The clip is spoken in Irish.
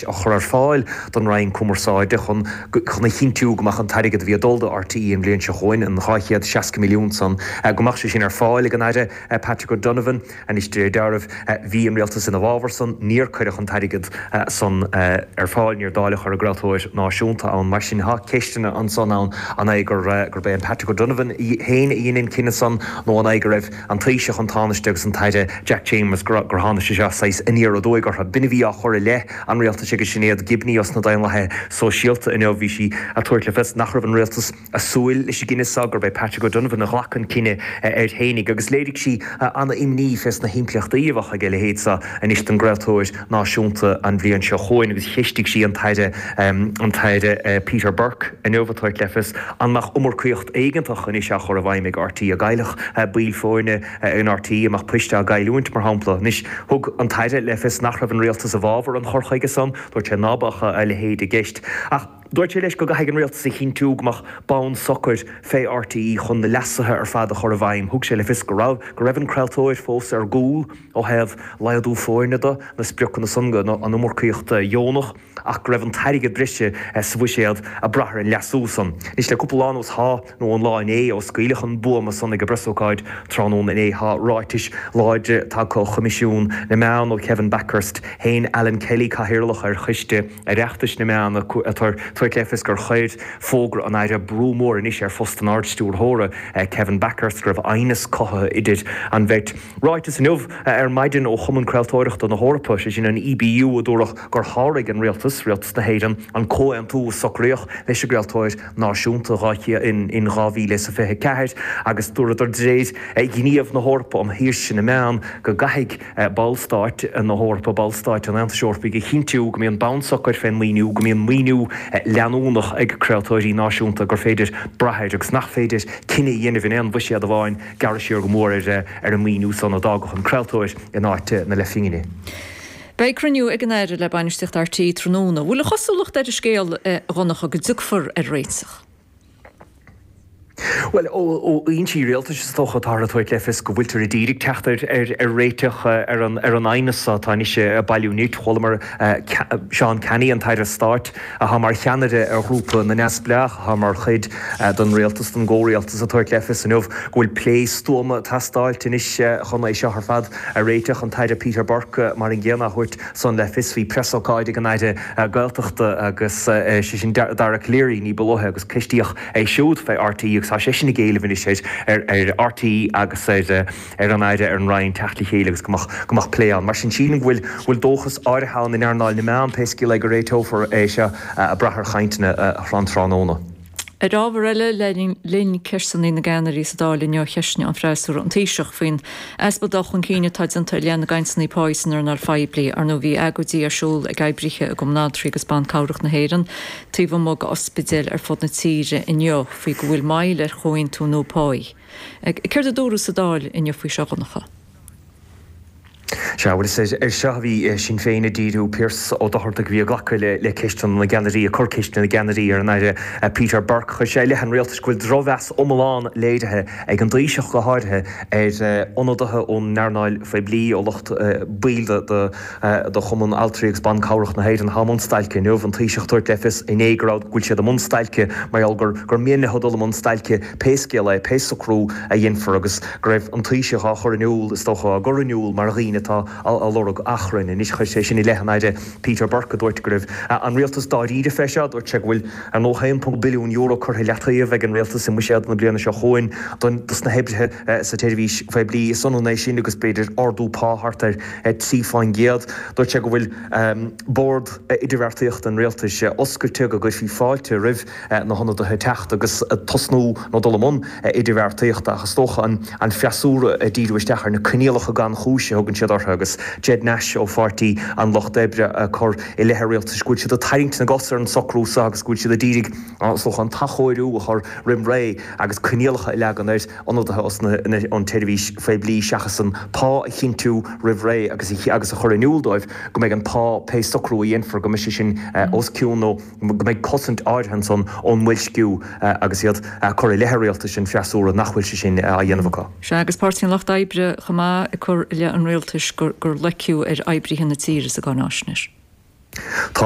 a chur ar fáil don Roinn Cumarsáide chun chun a chinntiú go mbeadh an t-airgead a bhí ag dul do RTÉ an bhliain seo chugainn, an 260 milliún san, go mbeadh sé sin ar fáil ag an Aire Patrick O'Donovan. Anois de réir deáraimh bhí an Rialtas i bhfabhar san, níor cuireadh an t-airgead san ar fáil, níor dáileadh é ar an gcraoltóir náisiúnta ann. Mar sin tá ceisteanna ansan ann, an é gur gurb é an Patrick O'Donovan féin a dhein an cinneadh san nó an é go raibh. An Taoiseach, an Tánaiste agus an tAire Jack Chambers gur tháinig sé seo saghas aniar aduaidh orthu. B'in a bhí á chur i leith an rialtais ag Sinéad Gibney ó sna Daonlathaithe Sóisialta inniu. Bhí sí ag tabhairt le fios nach raibh an rialtas ag súil leis an gcinneadh seo, gurb é Patrick O'Donovan a ghlac an cinneadh air fhéinig agus léirigh sí an-imní fé sna himpleachtaí a bheadh ag a leithéid seo anois don gcraoltóir. Náisiúnta an bhliain seo chugainn agus cheistigh sí an tAire, an tAire Peter Burke inniu, a tabhairt le fios an mbeadh iomarcaíocht éigeantach anois á chur i bhfeidhm ag RTÉ, an gcaillfeadh baill foirne in RTÉ, an mbeadh poist á gcailliúint, mar shampla. Anois, thug an tAire le fios nach raibh an Rialtas i bhfabhar an chur chuige san. Dúirt sé ná beadh a leithéid i gceist ach. Dúirt sé leis go gcaithfidh an Rialtas a chinntiú go mbeadh bonn socair fé RTÉ chun na leasuithe ar fad a chur i bhfeidhm. Thug sé le fios go raibh go raibh an craoltóir fós ar gcúl ó thaobh laghdú foirne de, na spriocanna san don iomarcaíocht dheonach ach go raibh an t-airgead breise sa bhuiséad ag brath ar an leasú san. Anois le cúpla lá anuas tá. nó an lá inné, ó scaoileadh an buama san ag an bpreasócáid tráthnóna inné, tá ráitis láidre tagtha ó Choimisiún na Meán, ó Kevin Bakhurst, shéan Alan Kelly, Cathaoirleach ar Choiste Oireachtais na Meán, a tabhairt le fios gur chuir fógra an Aire brú mór anois ar phost an Ardstiúrthóra, Kevin Bakhurst, go raibh aighneas cothaithe idir an bheirt. Ráiteas inniu, ar maidin, ó Chumann Craoltóireachta na hEorpa, sé sin an EBU, agus dúradh gur sháraigh an Rialtas, Rialtas na hÉireann, an comhaontú a socraíodh leis an gcraoltóir, Náisiúnta dhá in 2024 agus dúradar dréir ghníomh na hEorpa um shaoirse na meán go gcaithfidh Ballstáit na hEorpa, Ballstáit an Aontais Eorpaigh a chinntiú go mbíonn bonn socair fén maoiniú, go mbíonn maoiniú leanúnach ag craoltóirí náisiúnta, gur féidir brath air agus nach féidir cinneadh a dhéanamh in aon bhuiséad amháin gearradh siar go mór ar an maoiniú san a d'fhágfadh an craoltóir in áit na leathphingine. Beidh cruinniú ag an Aire le Bainistíocht RTÉ tráthnóna. Bhfuil an chosúlacht ar an scéal, a Dhonncha, go dtiocfar ar réiteach? Bhuel, ó fhoinsí rialtais is dócha, táthar ag tabhairt le fios go bhfuiltear ag díriú ar theacht ar réiteach ar an aighneas atá anois ag bailiú nirt. Chualamar Seán Canney, an tAire Stáit atá mar cheannaire ar Ghrúpa na Neamhspleách atá mar chuid den rialtas, den gcomhrialtas, ag tabhairt le fios inniu go bhfuil plé stuama ag teastáilt anois chun é seo ar fad a réiteach. An tAire Peter Burke mar an gcéanna á thabhairt san le fios. Bhí preasócáid ag an Aire Gaeltachta agus sé sin Dara Calleary ní ba luaithe agus ceistíodh é siúd fé RTÉ agus tá seisean ag éileamh anois ar RTÉ agus ar an Aire, ar an Roinn teacht le chéile agus go mbeadh plé ann. Mar sin sílim go bhfuil dóchas áirithe ann in earnáil na meán pé scéal é go réiteofar é seo ag brath ar chainteanna um thráthnóna. Ar ábhar eile, le linn ceisteanna na gceannairí sa Dáil inniu cheistigh an freasúra an Taoiseach faoin easpa dul chun cinn atá déanta i leith na gcainteanna pá san earnáil phoiblí, ar ndóigh bhí agóidí ar siúl ag oibrithe i gCumann Altraí agus Ban Cabhrach na hÉireann taobh amuigh d'ospidéil ar fud na tíre inniu faoi go bhfuil moill ar chomhaontú nua pá. Céard a dúradh sa Dáil inniu faoi seo, a Dhonncha? Sea bhuel is air seo a bhí Sinn Féin ag díriú. Piaras Ó Dochartaigh a bhí ag glacadh le ceisteanna na gceannairí, ag cur ceisteanna na gceannairí ar an Aire Peter Burke. Chuir sé i leith an Rialtais go bhfuil drochmheas iomlán léirithe ag an dTaoiseach go háirithe ar ionadaithe ón earnáil phoiblí, ó lucht, baill de Chumann Altraí agus Ban Cabhrach na hÉireann atá i mbun stailce inniu. An Taoiseach ag tabhairt le fios inné go raibh, go bhfuil siad i mbun stailce mar gheall gur mian leo dul i mbun stailce. pé scéal é, pé socrú a dhéanfar, agus go raibh an Taoiseach á chur in iúl, is dócha, á gcur in iúl mar dhaoine atá ag lorg achrainn. Anois, chuir sé sin i leith an Aire Peter Burke, a dúirt go raibh an Rialtas dáiríre fé seo. Dúirt sé go bhfuil ar ndóigh €1.2 billiún curtha i leataobh ag an Rialtas i mbuiséad na bliana seo chugainn dos na hoibrithe sa tseirbhís phoiblí. Is ionann é sin agus b'fhéidir ardú pá thart ar 3 fán gcéad. Dúirt sé go bhfuil Bord Idirbheartaíochta an Rialtais oscailte, go gcuirfí fáilte roimh. na hionadaithe teacht agus tosnú nó dul i mbun idirbheartaíochta ach is dócha an freasúra ag díriú isteach ar na coinníollacha gan chúis a thugann siad orthu agus Ged Nash ó Pháirtí an Lucht Oibre ag cur i leith an rialtais go bhfuil siad ag tarraingt na gcos ar an socrú seo agus go bhfuil siad ag iarraidh an t-athchóiriú a chur roimh ré agus coinníollacha a leagan ar ionadaithe ón tseirbhís phoiblí seachas an pá a chinntiú roimh ré agus a chur in iúl dóibh go mbeidh an pá, pé socrú a dhéanfar, go mbeidh sé sin os cionn nó. go mbeidh cosaint áirithe ansan ón mboilsciú agus iad a' cur i leith a' rialtais an freasúra nach bhfuil sé sin á dhéanamh acu. Sea, agus Páirtí an Lucht Oibre chomh maith ag cur i leith an rialtais gur loiceadh ar oibrithe na tíre sa gcáináisnéis. Tá